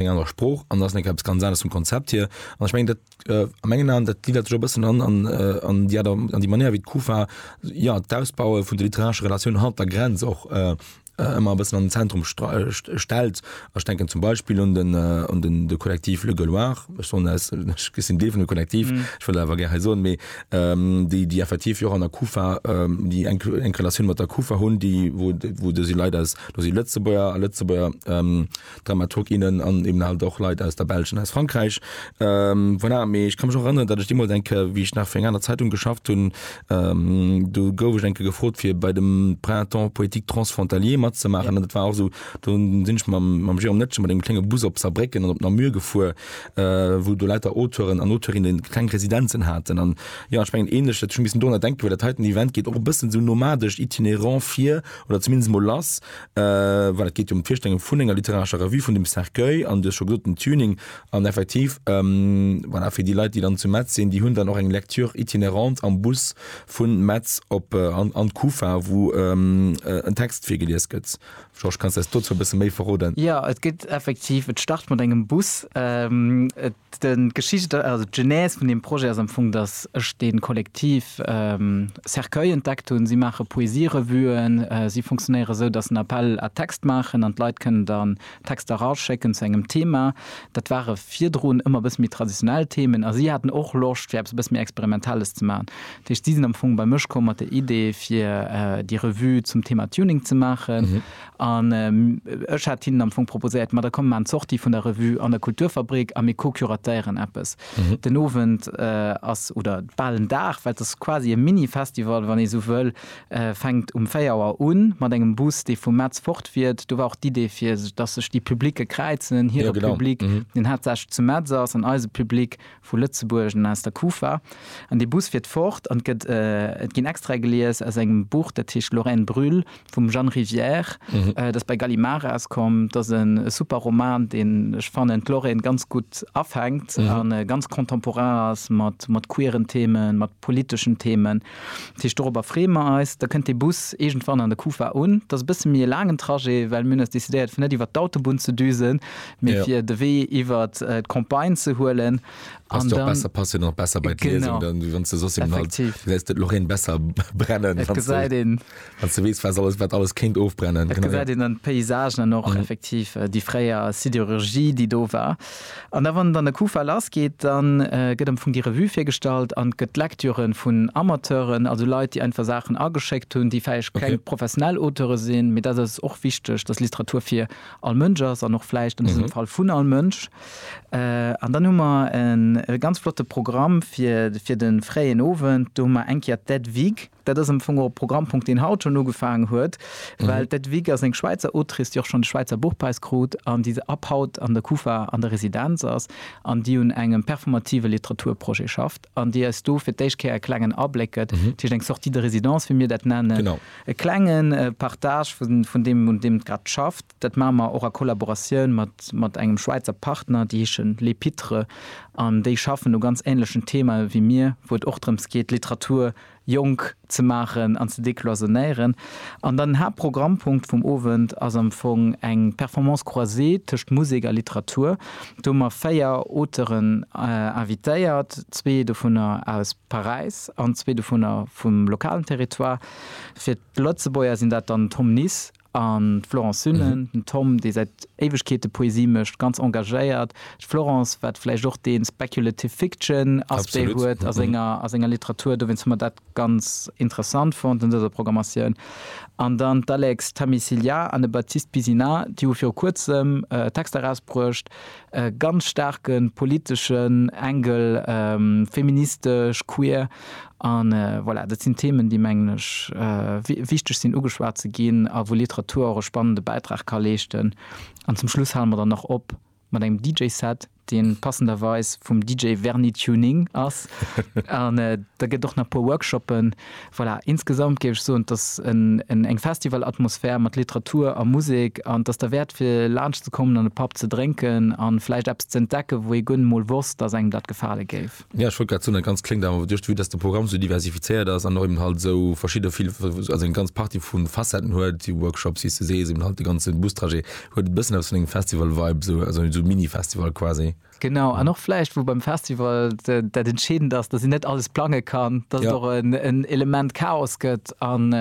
eng aner Sproch an ass eppes ganz anders zum Konzept hier an ich meng dat äh, a mengen an dat gliedert jo bëssen an an äh, an ja da, an die Manier wie d'Kufa ja d'Ausbaue vun de literarsche Relatioun hat der Grenz och äh, äh ëmmer bëssen an den Zentrum äh, stellt ech denken zum Beispiel un den äh, un den de Kollektiv Le Gauloir gesinn dee vun de Kollektiv mhm. ich will awer ger so méi ähm, déi die effektiv jo an der Kufa ähm, die eng eng Relatioun mat der Kufa hunn die wo wo du sie leider do sie Lëtzebuer Lëtzebuer ähm, Dramaturg, innen an eben halt och Leit aus der Belsch an aus Frankräich. Voilà, mee ech ka mech och erënneren, datt ech deemools eng Kéier, wéi ech nach fir eng aner Zeitung geschafft hunn, do gouf ech eng Kéier gefrot, fir bei dem Printemps poétique transfrontalier matzemaachen. An dat war och esou, do sinn ech mam, mam Jérôme Netschel mat engem klenge Bus op Saarbrécken an op Namur gefuer, wou do lauter Auteuren an Auteurinnen esou kleng Residenzen haten. An jo, ech mengen, änlech huet ech elo missen dorunner denken, well dat heiten Event geet och e bëssen esou nomadesch, itinérant vir oder zumindest emol lass. well et geet jo ëm d'Virstellung vun enger literarescher Revue, vun dem Cercueil an du hues scho gesot den Tuning an effektiv voilà, fir déi Leit, déi dann zu Metz sinn, déi hunn dann och eng Lecture itinerante am Bus vun Metz op an an d'Kufa, wou en Text virgelies gëtt. Georges, kanns de eis dozou e bësse méi verroden? Jo, et gëtt effektiv, et start mat engem Bus, et. D'Geschicht, also d'Genèse vun deem Projet ass am Fong, dass ech dee Kollektiv Cercueil entdeckt hunn. Si maache Poesierevuen. Si funktionéiere sou, dass se en Appel à textes maachen an d'Leit kënnen dann Texter eraschécken zu engem Thema. Dat ware virdrun ëmmer e bësse méi traditionell Themen a si haten och Loscht, fir eppes e bësse méi Experimentelles ze maachen. Dat heescht, si sinn am Fong bei mech komm mat der Idee, fir déi Revue zum Thema Tuning ze maachen. An ech hat hinnen am Fong proposéiert, ma da komm, mir maachen d'Sortie vun der Revue an der Kulturfabrik a mir co-curatéieren eppes. Den Owend ass, oder bal en Dag, well et ass quasi e Mini-Festival, wann ee esou wëll, fänkt um véier Auer un, mat engem Bus, dee vum Metz fort fiert. Do war och d'Idee, fir dass sech déi Publicë kräizen, hire Public, deen haaptsächlech zu Metz ass, an eise Public, Vu Lëtzebuerg an aus der Kufa. An dee Bus fiert fort an et ginn Extraite gelies aus engem Buch, dat heescht Lorraine brûle vum Jeanne Rivière, dat bei Gallimard erauskoum. Dat ass e super Roman, deen, ech fannen, d'Lorraine ganz gutt afänkt a ganz contemporain ass mat queeren Themen, mat politeschen Themen. Dat heescht, dorobber freeë mer eis. Da kënnt dee Bus iergendwann an der Kufa un. Dat ass e bësse méi e laangen Trajet, well mir hunn eis decidéiert, fir net iwwert d'Autobunn ze düsen, mee fir de Wee iwwert d'Campagne ze huelen. An da. Passt jo och besser, passt jo nach besser bei d'Liesung dann, wéi wann s de soss jemanden halt gesäis. Effektiv. Gesäis de d'Lorraine besser brennen, wann s de. Et gesäit een Wann s de weess, wat alles kéint ofbrennen. Et gesäit een an d'Paysagen an och effektiv déi fréier Sidérurgie, déi do war. An da, wann dann de Kufa lassgeet, da gëtt am Fong déi Revue virgestallt an et gëtt Lektüre vun Amateuren, also Leit, déi einfach Saachen ageschéckt hunn, déi vläicht keng professionell Auteure sinn. Mee dat ass och wichteg, dass Literatur fir all Mënsch ass an och vläicht an dësem Fall vun all Mënsch. An dann hu mer e ganz flotte Programm fir de fréien Owend. Do hu mer eng Kéier d'Ed Wig. Dat ass am Fong och e Programmpunkt, deen haut schonn ugefaangen huet, well d'Hedwig ass eng Schwäizer Autrice, déi och schonn de Schwäizer Buchpräis krut an déi ab haut an der Kufa an der Residenz ass an déi un engem performative Literaturprojet schafft an déi eis do fir d'éischt Kéier e klengen Abléck gëtt. Dat heescht eng Sortie de résidence, wéi mir dat nennen, e klenge Partage vun deem, un deem et grad schafft. Dat maache mer och a Kollaboratioun mat engem Schwäizer Partner, déi heeschen Les Pitres an déi schaffen u ganz änlechen Themae wéi mir, wou et och drëms geet, Literatur jonk ze maachen an ze decloisonnéieren. An dann den Haaptprogrammpunkt vum Owend ass am Fong eng Performance croisée tëscht Musek a Literatur. Do hu mer véier Auteuren invitéiert, zwee dovunner aus Paräis an zwee dovunner vum lokalen Territoire. Fir d'Lëtzebuerger sinn dat dann Tom Nis An d'Florence Sunnen, den Tom, dee säit Éiwegkeete Poesie mécht, ganz engagéiert. D'Florence, wat vläicht och dee speculative fiction Aspect huet a senger, a senger Literatur. Dowéinst hu mer dat ganz interessant fonnt an dëser Programmatioun. An dann d'Alex Thami-Cilliat an de Baptiste Bizina, déi hu viru Kuerzem Texter erausbruecht, e ganz staarke politeschen Engel, feministesch, queer, a voilà, dat sinn Themen, déi, mengen ech, wichteg sinn ugeschwat ze ginn a wou Literatur och e spannende Bäitrag ka leeschten. An zum Schluss hale mer dann nach op mat engem DJ-Set, dee passenderweis vum DJ Verni Tuning ass, an da gëtt och nach e puer Workshoppen Voilà, insgesamt géif ech soen, dass eng Festivalatmosphär mat Literatur a Musek, an dass der wäert fir laanscht ze kommen an e Papp ze drénken a vläicht eppes ze entdecken, wou ee guer net emol wosst, dass engem dat gefale géif. Jo, ech wollt grad soen, dat Ganzt kléngt awer, duerch de Vue, dass de Programm esou diversifizéiert ass an och eben halt esou verschidde vill, also eng ganz Partie vu Facetten huet, si Workshops, si CCs, eben halt de ganze Bustrajet, huet e bëssen eppes vun engem Festival-Vibe, esou, also esou Mini-Festival quasi. Genau an och vläicht wou beim Festival dat entscheedend ass, datt een net alles plange kann, datt et och en Element Chaos gëtt an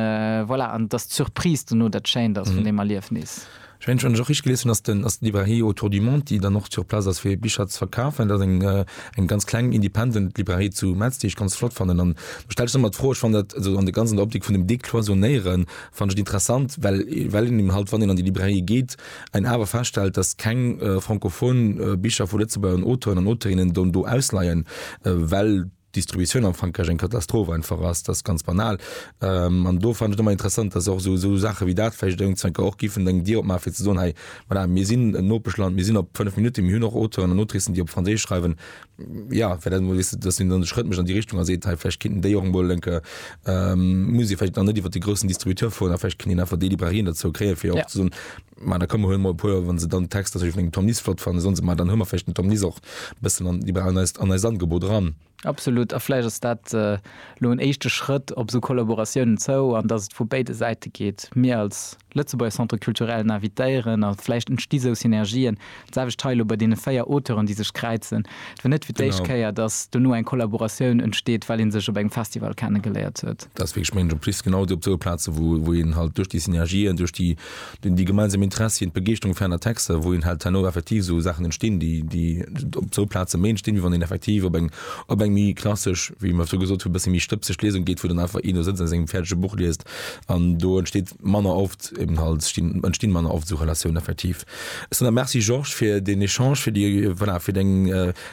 voilà an datt d'Surprise dono dat Schéint ass vun deem Erliefnis. Ech mengen wann ech och richteg gelies hunn, ass den ass d'Librairie Autour du Monde, déi dann och sur place ass fir Bicher ze verkafen, dat eng eng ganz kleng independent Librairie zu Metz, déi ech ganz flott fannen an do stellt sech ëmmer d'Fro, ech fannen dat also an der ganzen Optik vun dem Decloisonnéieren fannen ech et interessant, well well een eben halt wann een an déi Librairie geet, Ein awer feststellt, dass keng francophon Bicher vu Lëtzebuerger Auteuren an Auteurinnen do do ausleien, well d'Distributioun am Frankräich eng Katastroph einfach ass, dass ganz banal. An do fannen ech et ëmmer interessant, dass och esou esou Saache wéi dat vläicht iergendzenker och giffen eng Dier opmaachen, fir ze soen, Hei, voilà, mir sinn en Nopeschland, mir sinn op fënnef Minutte, mir hunn och Auteuren an Autricen, déi op Franséisch schreiwen. ja fir dat emol wis dat sinn dann Schrëtt mech an déi Richtung a seet hei vläch kinnt déi och emol lenke ähm, muss vläch dann net iwwer de grossen Distributeur fueren, a vläch kënnt een einfach déi Librairien derzou kréie fir och ja. ze soen ma da këmme huel mol puer wann se dann Text dat vun engem Tom Nis flott fannen sonst ma dann hummer vläch den Tom Nis och bëssen an iwwer an eist an eist Angebot ran. Absolut a vläch ass dat äh, lo en éischte Schrëtt op sou Kollaboratiounen zou an datt et vu béide Säite geet. Mir als Lëtzebuerger Centres Culturellen invitéieren a vläicht entsti sou Synergien. D'selwecht hei elo bei deene véier Auteuren, déi sech kräizen. Et wier net fir d'éischt Kéier, datt dono eng Kollaboratioun entsteet, well ee sech op engem Festival kennegeléiert huet. Dat ass wierklech, mengen ech, en plus genau op esou Plaze wou een halt duerch déi Synergien, duerch déi gemeinsam Interessien, d'Begeeschterung fir aner Texter, wou een halt herno effektiv esou Saachen entstinn, déi op esou Plaze méi entstinn, wéi wann een effektiv op eng méi klassesch, wéi mer virdru gesot hunn, e bësse méi stëbseg Liesung geet, wou dann einfach een do sëtzt a sengem fäerdege Buch liest. an do entsteet manner oft eben halt stinn entstinn manner oft esou Relatiounen effektiv. Ech soen der Merci Georges fir deen Echange, fir déi voilà fir deng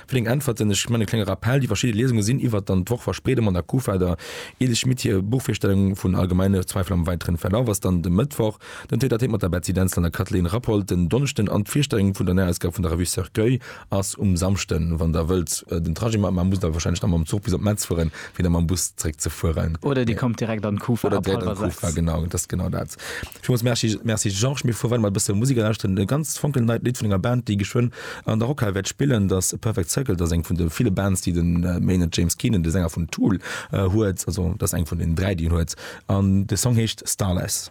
fir deng Äntwerten. Ech man e klenge Rappell, déi verschidde Liesungen sinn iwwert dann d'Woch Verspreedung an der Kufa, der Edel Schmit hir Buchvirstellung vun Allgemeine Zweifel am weiteren Verlauf ass dann de Mëttwoch, den Tête à Tête mat der Betsy Dentzel an der Kathleen Rappold, den Donneschden an d'Virstellung vun der Näiausgab vun der Revue Cercueil. ass um Samschden, wann der wëllt den Trajet maachen, mä musst awer wahrscheinlech nach mam Zuch bis op Metz fueren, fir da mam Bus zréck ze fueren. Oder Dir kommt direkt an d'Kufa ab hallwer sechs. Oder direkt an d'Kufa, genau, dat ass genau dat. Villmools merci, merci Georges. Mir fuere weider mat e bësse Musek a lauschteren e ganz fonkelneit Lidd vun enger Band, déi geschwënn an der Rockhal wäert spillen. Dat ass Perfect Circle, dat ass eng vun de ville Bands, déi de Maynard James Keenan, de Sänger vun Tool, huet. Also dat ass eng vun den dräi, déi en huet an de Song heescht Starless.